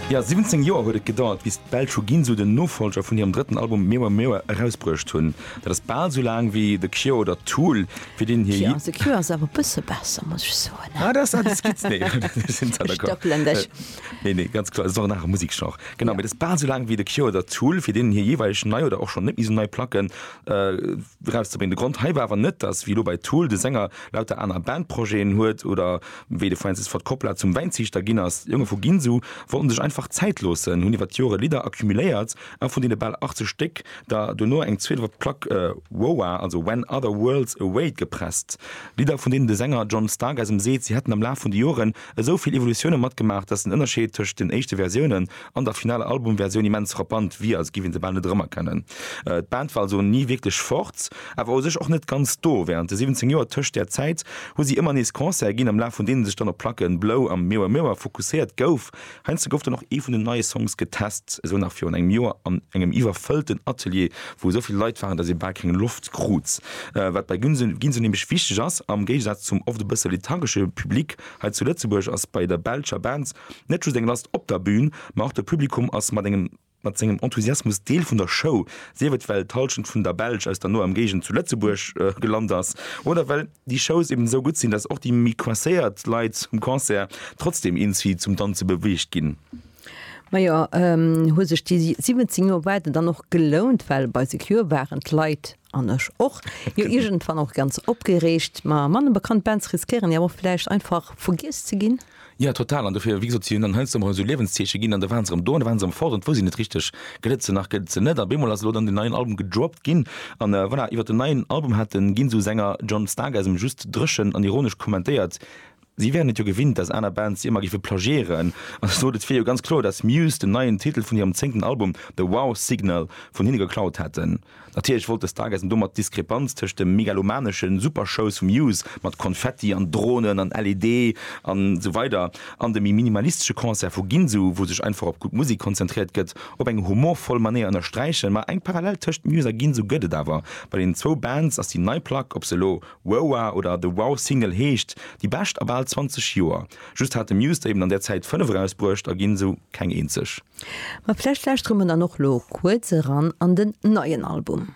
Jo, 17 Joer huet et gedauert, bis d'Belsch vu Ginsu den Nofollger vun hirem drëtten Album Mirror Mirror erausbruecht hunn. Dat ass bal sou laang wéi The Cure oder Tool, fir deenen hir Hit. The Cure ass awer e bësse besser, muss ech soen. Ah, dat ass awer Skizz. Nee, ech sinn zwar d'accord. Ech dëppelen dech. Nee, nee, ganz kloer, et ass och en anere Museksgenre. Genau, mee dat ass bal sou laang wéi The Cure oder Tool, fir deenen hir jeeweilegen nei oder och schonn net méi sou nei Placken. erauszebréngen. De Grond hei war awer net, datt, wéi elo bei Tool, de Sänger lauter aner Bandprojeten huet oder wéi de Francis Ford Coppola zum Wäinziichter ginn ass. D'Jonge vu Ginsu wollten sech einfach Zäit loossen, hunn iwwer d'Jore Lidder accumuléiert a vun deene bal 80 Stéck der dono eng zweet op d'Plack Whoa, also When Other Worlds Await gepresst. Lidder, vun deenen de Sänger John Stark eis ëm seet, si hätten am Laf vun de Joren esou vill Evolutioune matgemaach, datt den Ënnerscheed tëscht den éischte Versiounen an der finaler Album-Versioun immens frappant wier, als giff een se bal net erëmerkennen. D'Band war also ni wierklech fort, awer u sech och net ganz do. Wärend de 17 Joer tëscht där Zäit hu si ëmmer nees Concerte ginn, am Laf vun deene sech dann op d'Placke Blow a Mirror Mirror fokusséiert gouf, Heiansdo gouf dann och ee vun den neie Songs getest, esou nach virun engem Joer an engem iwwerfëllten Atelier, wou esou vill Leit waren, datt ee bal keng Loft krut. Wat bei Ginsu nämlech wichteg ass, am Géigesaz zum oft e bësse lethargesche Public hei zu Lëtzebuerg, ass bei der belscher Band net just eng Last op der Bün, ma och de Publikum ass mat engem. mat sengem Enthusiasmus Deel vun der Show, sief et well d'Hallschent vun der Belsch aus der noer Emgéigend zu Lëtzebuerg gelant ass oder well déi Shows eben esou gutt sinn, dass och déi méi coincéiert Leit um Concert trotzdem eenzi zum Danze beweegt ginn. Majo, hu sech déi 17 Joer Waarde dann och gelount, well bei Secure waren d'Leit An ech och. Jo iergendwann och ganz opgereegt. Ma manne bekannt Bands riskéieren jo och vläicht einfach vergiess ze ginn. Jo total. An dofir, wéi gesot, si hunn dann heiansdo emol esou Liewenszeeche ginn an da waren se erëm do an da waren se erëm fort an et wousst een net richteg, gëtt et se nach, gëtt et se net. An op eemol ass elo dann den neien Album gedroppt ginn an voilà, iwwer den neien Album hat den Ginsu-Sänger John Stark eis em just dréchen an ironesch kommentéiert, Si wären et jo gewinnt, dass aner Bands si ëmmer géife plagiéieren. An ech sot, et wier jo ganz kloer, dass Muse den neien Titel vun hirem zéngten Album The Wow Signal vun hinne geklaut hätten. Natierlech wollt de Stargazer domat d'Diskrepanz tëscht dem megalomanesche Supershows vu Muse mat Konfetti an Dronen an LED a sou weider an de méi minimalistesche Concert vu Ginsu, wou sech einfach op gutt Musek konzentréiert gëtt, op eng humorvoll Manéier ënnersträichen. Ma eng Parallel tëscht Muse a Ginsu gëtt et awer bei den zwou Bands, ass déi nei Plack, ob se elo Woa oder The Wow Single heescht déi bescht a bal 20 Joer. Just hat de Muse der eben an där Zäit 5 erausbruecht a ginn esou keng eenzeg. Ma vläicht lauschtere mer dann och lo kuerz eran an den neien Album.